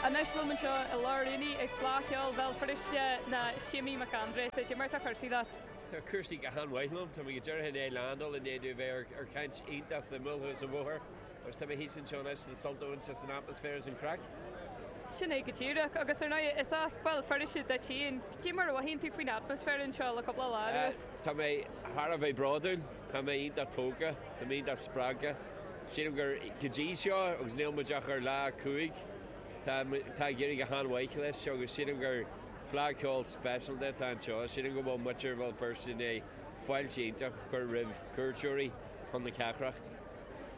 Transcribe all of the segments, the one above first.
Anois liom anseo i lár an aonaigh ag Fleadh Cheoil Bhéal Feirste ná Séimí Mac Aindré. Cad é mar atá cúrsaí leat? Tá cúrsaí go han mhaith liom. Tá mé go díreach i ndiaidh landáil, i ndiaidh bheith ar ar chaint iontach suimiúil thuas an bhóthair agus tá mé thíos anseo anois le sult a bhaint as an atmaisféar is an craic. Sin é go díreach. Agus ar ndóigh, is as Béal Feirste duit féin. Cé mar a mhothaíonn tú faoin atmaisféar anseo le cúpla lá anuas? Tá mé thar a bheith bródúil. Tá mé iontach tógtha. Tá mé iontach spreagtha. Sílim gur go dtí seo, agus níl muid ach ar lá a cúig, tá ag éirí go han-mhaith leis agus sílim gur Fleadh Ceoil speisialta atá anseo. Sílim go bhfuil muintir Bhéal Feirste i ndiaidh fáilte iontach a chur roimh chuairteoirí chun na cathrach.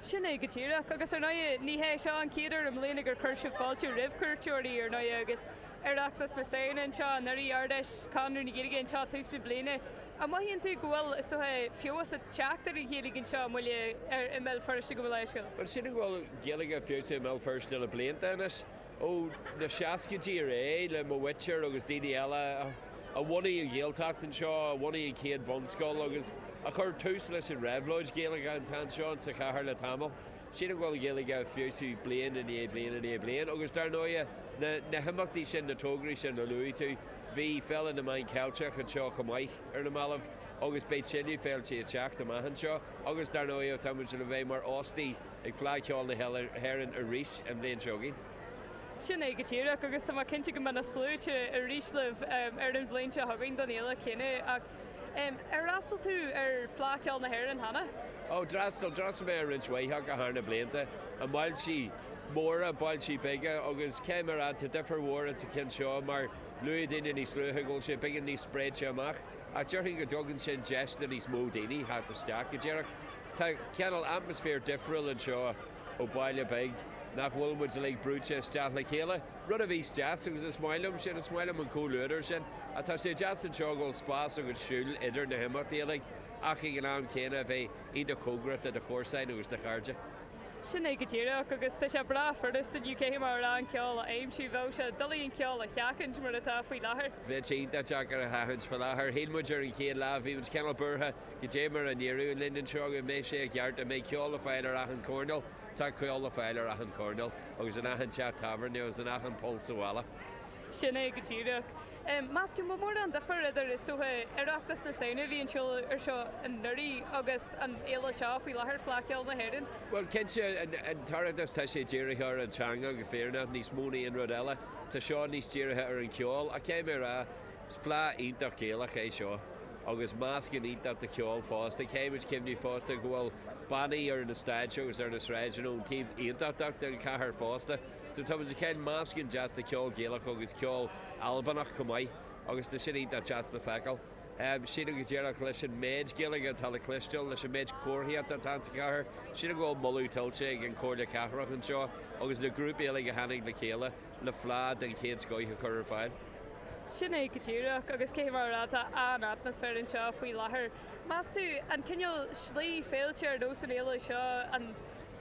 Sin é go díreach. Agus ar ndóigh, ní hé seo an chéad uair i mbliana gur chuir sibh fáilte roimh chuairteoirí, ar ndóigh, agus Oireachtas na Samhna anseo anuraidh, Ard-Fheis, Conradh na Gaeilge anseo tús na bliana. An mothaíonn tú go bhfuil, is dócha, feabhas ag teacht ar an Ghaeilge anseo i mBaile ar i mBéal Feirste dá bharr sin? Bhuel, sílim go bhfuil Gaeilge ag feabhsú i mBéal Feirste le blianta anois, ó na seascaidí ar aghaidh, le mo mhuintir agus daoine eile a bhunaigh an Ghaeltacht anseo, a bhunaigh an chéad bhunscoil agus a chuir tús leis an réabhlóid Ghaeilge atá anseo insa chathair le tamall. sílim go bhfuil Gaeilge ag feabhsú bliain i ndiaidh bliain i ndiaidh bliain agus dar ndóighe na himeachtaí sin, na tograí sin a luaigh tú. Bhí Féile na Meán Ceilteach anseo chomh maith ar na mallaibh agus beidh tuilleadh féilte ag teacht amach anseo agus dar ndóighe tá muid le bheith mar óstaí ag Fleadh Cheoil na hÉireann arís an bhliain seo chugainn. Sin é go díreach agus tá mé cinnte go mbeidh na sluaite arís libh ar an bhliain seo chugainn don fhéile chéanna. Ar fhreastal tú ar Fleadh Ceoil na hÉireann cheana? Ó, d'fhreastal. D'fhreastal mé ar roinnt mhaith acu thar na blianta, i mbailtí móra, bailtí beaga agus cad é mar a, tá difear mhór ins an cheann seo mar luaigh daoine níos luaithe go bhfuil sé beagán níos spréite amach ach déarfainn go dtugann sin deis do níos mó daoine theacht isteach go díreach. Tá cineál atmaisféar difriúil anseo. Ó baile beag, nach bhfuil muid uilig brúite isteach le chéile? Rud a bhíos deas, agus is maith liom sin, is maith liom an comhluadar sin, ach tá sé deas anseo go bhfuil spás agat siúl idir na himeachtaí uilig ach ag an am céanna a bheith iontach cóngarach do do chomharsain agus do chairde. Sin é go díreach, agus tá sé breá furast inniu cad é mar a déarfá an ceol a aimsiú, bheadh sé doiligh an ceol a sheachaint mar atá faoi láthair. Bheadh sé iontach deacair a sheachaint faoi láthair. Shíl muid ar an chéad lá, bhí muid cineál buartha Cad é mar a n-éireoidh linn anseo, an mbeidh sé i gceart, an mbeidh ceol le fáil ar achan choirneál? Tá ceol le fáil ar achan choirneál agus in achan teach tábhairne agus in achan poll sa bhalla. Sin é go díreach. Meas tú, an bhfuil mórán difir idir, is dócha, Oireachtas na Samhna a bhí anseo anuraidh agus an fhéile seo faoi láthair, Fleadh Cheoil na hÉireann? Bhuel, cinnte, an tOireachtas tá sé dírithe ar an teanga go fírinneach níos mó na aon rud eile. Tá seo níos dírithe ar an cheol. Ach cad é mar a déarfá, Is fleadh iontach Ghaelach é seo, agus meascán iontach de cheol fosta. Caithfimid cuimhneamh fosta go bhfuil bannaí ar na stáitse agus ar na sráideanna ón taobh Aontachtach den chathair fosta, so tá muid ag caint meascán deas de cheol Gaelach agus ceol Albanach chomh maith, agus tá sin iontach deas le feiceáil. Sílim go díreach, leis an méid Gaeilge atá le cloisteáil, leis an méid comharthaíocht atá ins an chathair, sílim go bhfuil moladh tuillte ag an Chomhairle Cathrach anseo agus na grúpaí uilig a tháinig le chéile, le fleá den chéad scoith a chur ar fáil. Sin é go díreach, agus cé mar atá an atmaisféar anseo faoi láthair, meas tú? An cineál slí féilte ar nós an fhéile seo an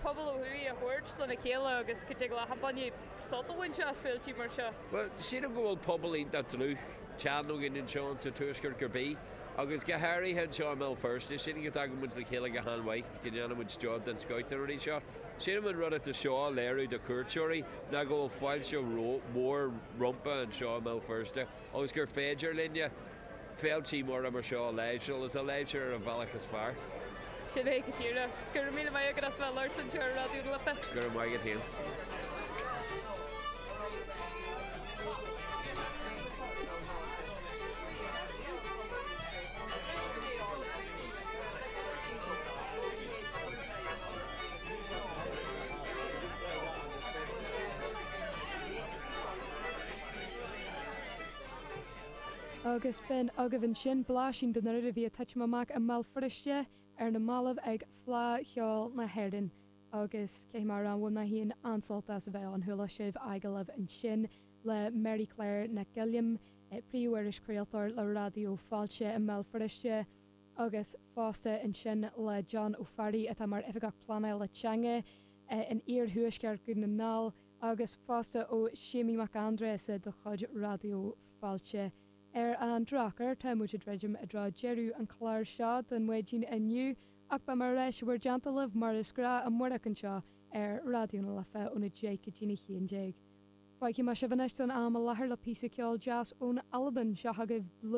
pobal ó thuaidh a thabhairt lena chéile agus go dtig leat an bainne sult a bhaint as féiltí mar seo? Bhuel, sílim go bhfuil pobal iontach dlúth teann againn anseo in sa tuaisceart go bith, agus go háirithe anseo i mBéal Feirste. Sílim go dtagann muid le chéile go han-mhaith, go ndéanaimid job den scoith na rudaí seo. Sílim an rud atá seo a léiriú do chuairteoirí ná go bhfuil fáilte mhór rompa anseo i mBéal Feirste agus gur féidir linne féiltí móra mar seo a láimhseáil is a láithriú ar an bhealach is fearr. Sin é, go díreach. Go raibh míle maith agat as bheith ag labhairt anseo ar Raidió na Life. Go raibh maith agat féin. Agus bhí agaibh ansin, blaisín den rud a bhí ag titim amach i mBéal Feirste ar na mallaibh ag Fleá Cheoil na hÉireann agus cé mar a bhí mé féin an-sásta as a bheith ann, chuala sibh agallaimh ansin le Mary Claire Nic Giolláin, príomh-irischraoltóir le Raidió Fáilte i mBéal Feirste, agus fosta ansin le Dónall Ó Fearraigh atá mar Oifigeach Pleanála Teanga in Iarthuaisceart Dhún na nGall agus fosta ó Séimí Mac Aindreasa de chuid Raidió Fáilte. Ar an drochuair tá muid ag druidim i dtreo deireadh an chláir seo don mhaidin inniu ach beidh muid ar ais bhur ndálta libh mar is gnáth amárach anseo ar Raidió na Life óna deich go dtí a haon déag. Fágfaidh mé sibh anois don am i láthair le píosa ceoil deas ón Albain, seo agaibh The.